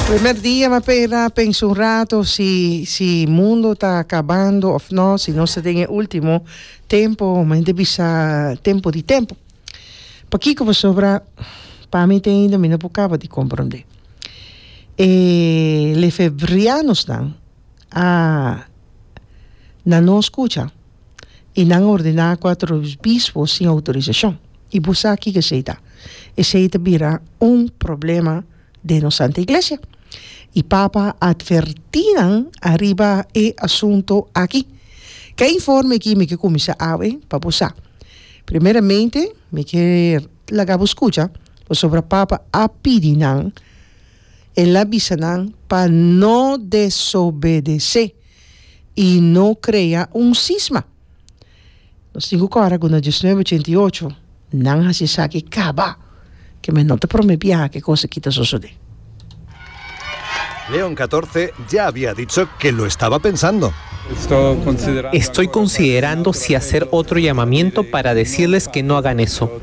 Primer dia mi a pera pensa un rato si si mundo ta kabando of no si nos ta den e ultimo tempo mi a henter bisa tempo di tempo pakiko pasobra pa mi te ainda mi no por kaba di komprende e lefebrianosnan. a na no skucha i nan a ordená ku a través bispo sin outorisashon. I bo sa kiko esei ta? Esei ta bira un problema den nos Santa Iglesia. I Papa a atvertí nan ariba e asuntu aki. Ke a informe aki mi ke kuminsá awe pa bo sa. Primeramente mi ke laga bo skucha pasobra Papa a pidi nan. El a bisa nan pa no desobedesé i no krea un sisma. Nos tin ku kòrda ku na diesnuebe ochenta i ocho nan hasi esaki kaba, ke mi no ta promé biaha ke kos akí ta sosodé. Leon Katorse dja habia dicho ke lo estaba pensando. Estoy considerando si hacer otro llamamiento para decirles que no hagan eso.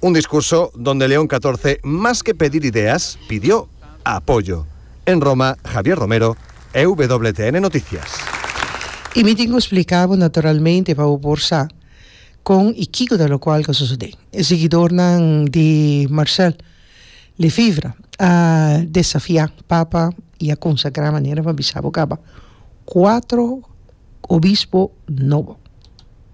Un discurso donde León Catorce mas ke pedir ideas, pidió apoyo. En Roma, Javier Romero, EWTN Noticias. Y mi tin cu splica bo naturalmente pa bo por sa con y kico ta locual cu a sucede. E seguidornan di Marcel Lefevre a desafia Papa y a consagra manera pa bisa bo caba cuatro obispo nobo.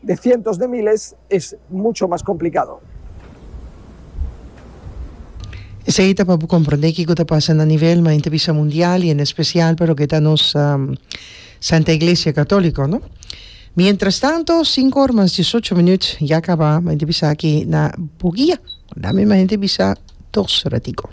De sientos de miles es mucho mas complicado. Esei ta pa bo comprende kico ta pasa na nivel mas enta bisa mundial y en especial pa loke ta nos Santa Iglesia Catolico, no? Mientras tanto, cinco ora mas diesocho minuut ya caba, ma enta bisa aki na Boguia. Dame ma enta bisa dos ratico.